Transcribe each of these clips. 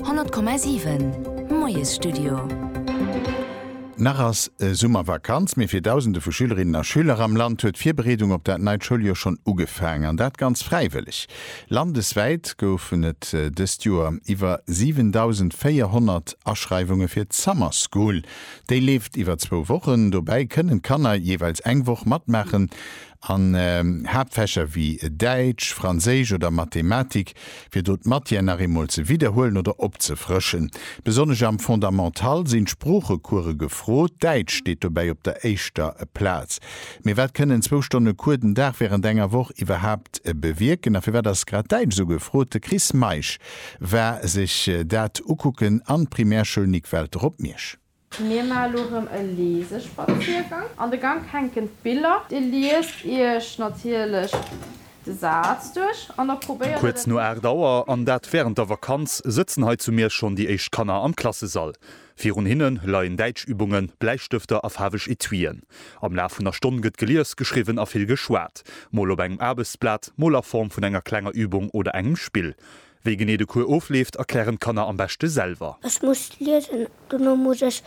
100,7 Moiesstudio. Nach ass Summervakanz, mee fir Dausende vu Schülerinnen a Schüler am Land huet d'Virbereedung op dat neit Schouljoer schonn ugefaangen. An dat ganz fräiwëlleg. Landeswäit goufen et dëst Joer iwwer 7.400 Aschreiwunge fir d'Summer School. Déi leeft iwwer zwou Wochen. Dobäi kënnen d'Kanner jeeweils eng Woch matmaachen An Haaptfächer wéi Däitsch, Franséisch oder Mathematik wier do d'Matière nach eemol ze widderhuelen oder opzefrëschen. Besonnesch am Fondamental sinn d'Sproochecourse gefrot, Däitsch steet dobäi op der éischter Plaz. Mee wat kënnen zwou Stonne Cours den Dag wärend enger Woch iwwerhaapt bewierken? A firwat ass grad Däitsch esou gefrot? De Chris Meisch war sech dat ukucken an d'Primärschoul Nic Welter op Miersch. Mir man elo rem e Leesespaziergang. An de Gank hänken d'Biller. Dir liest iech natierlech de Saz duerch an da probéiert et. Kuerz no 8 Auer, an dat wärend der Vakanz, sëtzen hei zu Miersch schonn déi éischt Kanner am Klassesall. Virun hinne leien Däitschübungen, Bläistëfter a faarweg Etuien. Am Laf vun der Stonn gëtt gelies, geschriwwen a vill geschwat, mol op engem Aarbechtsblat, mol a Form vun enger klenger Übung oder engem Spill. Wéi genee de Cours ofleeft, erklären d'Kanner am beschte selwer. Ech muss liesen, dono muss ech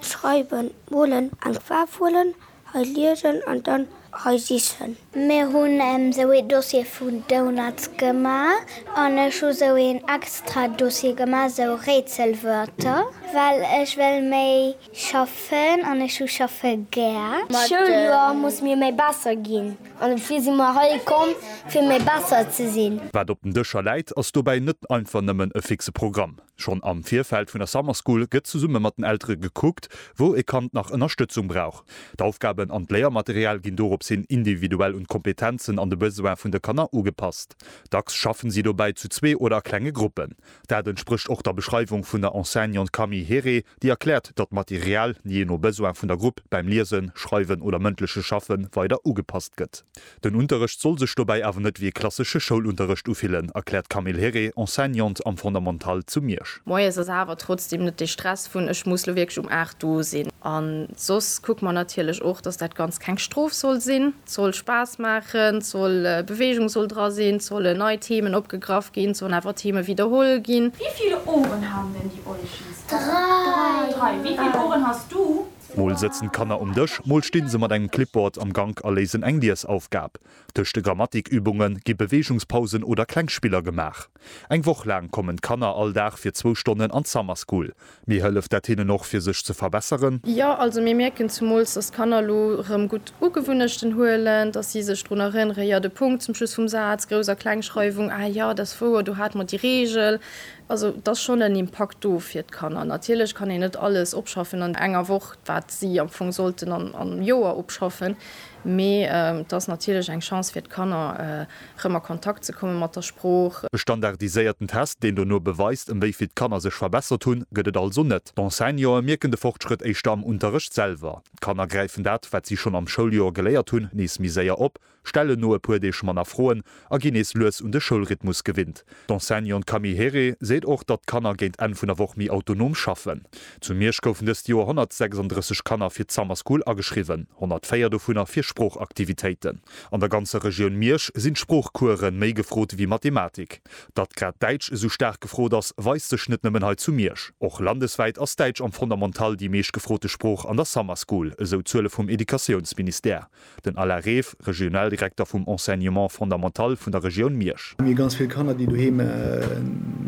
schreiwen, molen, eng Faarf huelen, hei liesen an dann hei sichen. Mir hunn esou ee Dossier vu Donuts gemaach an ech hu sou een extra Dossier gemaach, esou Rätselwörter, well ech wéll méi schaffen an ech hu schaffe gär. D'Schouljoer muss mir méi besser ginn. An dofir si mer hei komm, fir méi besser ze sinn. Wat op den Dëscher läit, ass dobäi net einfach nëmmen e fixe Programm. Schonn am Virfeld vun der Summer School gëtt zesumme mat den Eltere gekuckt, wou e Kand nach Ënnerstëtzung brauch. D'Aufgaben an d'Léiermaterial ginn doropshin individuell un d'Kompetenzen an de Besoin vun de Kanner ugepasst. Dacks schaffen si dobäi zu zwee oder a klenge Gruppen. Dat entsprécht och der Beschreiwung vun der Enseignante Camille Herré, déi erkläert, datt d'Material, jee no Besoin vun der Grupp, beim Liesen, Schreiwen oder mëndleche Schaffe weider ugepasst gëtt. Den Unterrecht soll sech dobäi awer net wéi e klassesche Schoulunterrecht ufillen, erkläert d'Camille Herré, Enseignante am Fondamental zu Miersch. Moies ass awer trotzdeem net dee Stress vun ech muss lo wierklech um 8 do sinn. An soss kucke mer natierlech och, datt dat Ganzt keng Strof soll sinn. Soll Spaass maachen, soll Beweegung soll dra sinn, sollen nei Themen opgegraff ginn, sollen awer Themen widderholl ginn? Wie vill Ohren haben denn die Eulchens? Drei. Wie vill Ohren hast du? Mol sëtzen d'Kanner um Dësch, mol stinn se mat engem Clipboard am Gank a léisen eng Liesaufgab. Tëscht de Grammatikübunge gi Beweegungspausen oder kleng Spiller gemaach. Eng Woch laang kommen d'Kanner all Dag fir zwou Stonnen an d'Summer School. Mee hëlleft dat hinnen och fir sech ze verbesseren? Jo, also mir mierken zemools, dass d'Kanner elo rëm gutt Ugewunnechten huelen, dass si sech drun erënneren, jo, de Punkt zum Schluss vum Saz, Grouss a Klengschreiwung, ah jo, dat ass wouer, do hate mer déi Reegel. Also et ass schonn en Impakt do fir d'Kanner. Natierlech kann een net alles opschaffen an enger Woch, wat si am Fong sollten am Joer opschaffen, mee et ass natierlech eng Chance fir d'Kanner, rëm a Kontakt ze komme mat der Sprooch. E standardiséierten Test, deen dono beweist, ëm wéi vill d'Kanner sech verbessert hunn, gëtt et also net. D'Enseignantë mierken de Fortschrëtt éischter am Unterrecht selwer. D'Kanner gräifen dat, wat si schonn am Schouljoer geléiert hunn, nees méi séier op, stellen no e puer Deeg manner Froen a ginn nees lues un de Schoulrhythmus gewinnt. D'Enseignante Camille Herré seet och, datt d'Kanner géint Enn vun der Woch méi autonom schaffen. Zu Miersch goufen dëst Joer 136 Kanner fir d'Summer School ageschriwwen, 104 dovunner fir Sproochaktivitéiten. An der ganzer Regioun Miersch sinn d'Sproochcoursë méi gefrot ewéi Mathematik. Datt grad Däitsch esou staark gefrot ass, weist sech net nëmmen hei zu Miersch. Och landeswäit ass Däitsch am Fondamental déi meescht gefrote Sprooch an der Summer School, esou d'Zuele vum Educatiounsministère. Den Alain Reef, Regionaldirekter vum Enseignement fondamental vun der Regioun Miersch. Mir hu ganz vill Kanner, déi doheem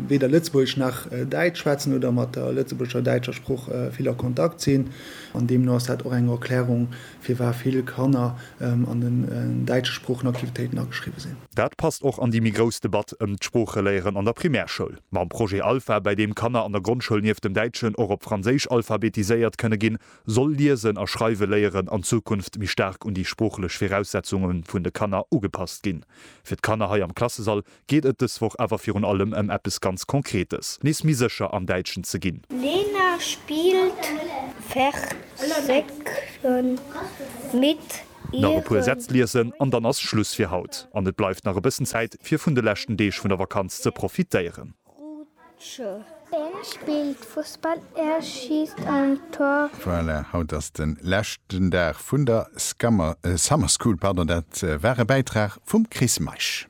weder Lëtzebuergesch nach Däitsch schwätzen oder mat der lëtzebuergescher-däitscher Sprooch vill a Kontakt sinn. An deemno ass dat och eng Erklärung, Firwat vill Kanner an den däitsche Sproochenaktivitéiten ageschriwwe sinn. Dat passt och an déi méi grouss Debatt ëm d'Sproocheléieren an der Primärschoul. Mam Projet Alpha, bäi deem Kanner an der Grondschoul nieft dem Däitschen och op Franséisch alphabetiséiert kënne ginn, soll Liesen a Schreiwe léieren an Zukunft méi staark un déi sproochlech Viraussetzunge vun de Kanner ugepasst ginn. Fir d'Kanner hei am Klassesall geet et dës Woch awer virun allem ëm eppes ganz Konkretes, nees méi sécher am Däitschen ze ginn. Lena spilt Versekchen mit ihren. Nach e puer Sätz liesen an dann ass Schluss fir haut an et bleift nach e bëssen Zäit fir vun de leschten Deeg vun der Vakanz ze profitéieren. Rutsche. En spillt Fussball, en schisst en Tor. Voilà, haut ass den leschten Dag vun der Summer School, pardon, dat war e Bäitrag vum Chris Meisch.